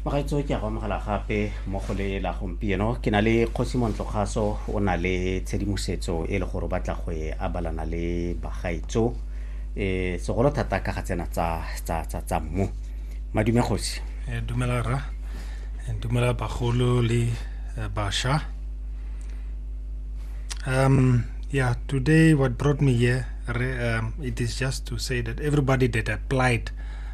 bagaetso ke a go amogela gape mo go le la gompieno ke na le kgosi montlogaso o na le tshedimosetso e le gore o batla go e abalana le bagaetso um segolo thata ka ga tsena tsa mmu madume kgosi eh, dumela ra eh, dumela bagolo le eh, basha um yeah today what brought me here um, it is just to say that everybody that applied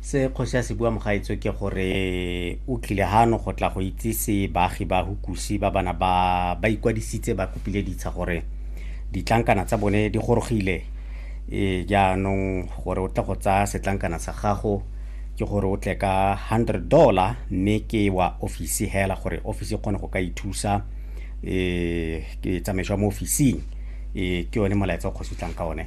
se kgosi a se bua mogaetso ke gore o tlile gano go tla go itsise baagi ba hukusi ba bana ba ba ikwadisitse ba kopile ditsha gore ditlankana tsa bone di gorogile e jaanong gore o tle go tsaya setlankana sa gago ke gore o tle ka 100 dollar mme ke wa ofisi hela gore ofisi e kgone go ka ithusa um ke tsamaiso ya mo ofising um ke yone molaetsa o kgosi tlang ka one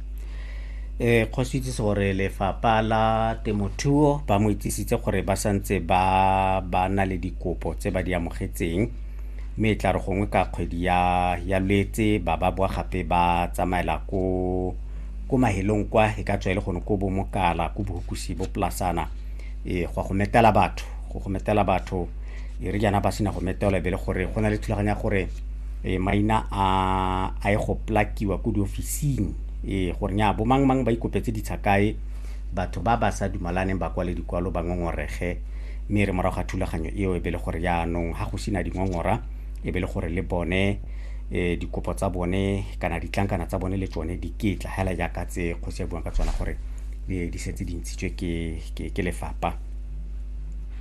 eh go itsise gore lefapha la temothuo ba mo itsisitse gore ba santse ba ba na le dikopo tse ba di amogetseng mme e tla re gongwe ka kgwedi ya ya lwetse ba ba boa gape ba tsamaela ko ko mahelong kwa e ka tswa e le gone ko bomokala ko bohukusi bo polasana e go go metela batho go go metela batho e re jaana ba sena go meteola e be le gore go na le thulaganya gore e maina a a e go plakiwa ko diofising e gore nya bo mang mang ba ikopetse ditsha kae batho ba ba sa dumalaneng ba kwale dikwalo ba ngongorege mme re morago ga thulaganyo eo e be le gore jaanong ga go sena dingongora e be le gore le bone eh dikopo tsa bone kana ditlankana tsa bone le tsone di ketla hela jaaka tse kgosi ya buang ka tsona gore di di setse di ntshitswe ke ke ke lefapa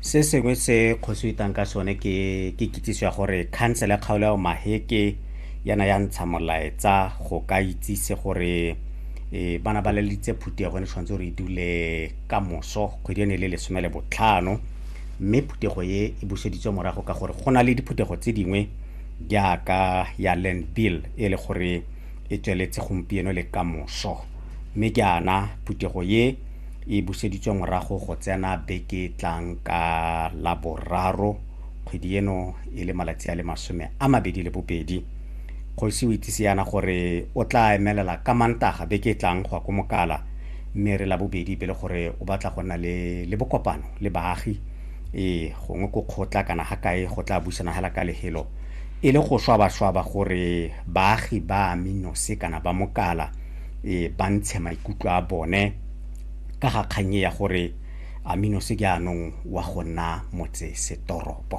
Se sengwe se kgosi itang ka sone ke ke kitsiso ya gore khansele ya kgaolo ya Maheke yana ya ntsha molaetsa go ka itsise gore e bana ba lelitse phuti ya gone tshwanetse gore e dule ka moso kgwedi ene le lesome le botlhano mme phuthego e e buseditswe morago ka gore go na le diphuthego tse dingwe jaaka ya land bill e le gore e tsweletse gompieno le ka moso mme jaana phuthego e e buseditswe morago go tsena beke tlang ka la boraro kgwedi eno e le malatsi a le masome a mabedi le bobedi kgosi o itsise yana gore o tla emelela ka mantaga beke e tlang go ya ko mokala mme re la bobedi be le gore o batla go nna le, le bokopano le baagi ee gongwe ko kgotla kana ga kae go tla busana hela ka lehelo e le go swabaswaba gore baagi ba minose kana ba mokala e ba ntshe maikutlo a bone ka ga kgang e ya gore Amino se jaanong wa go nna motsesetoropo.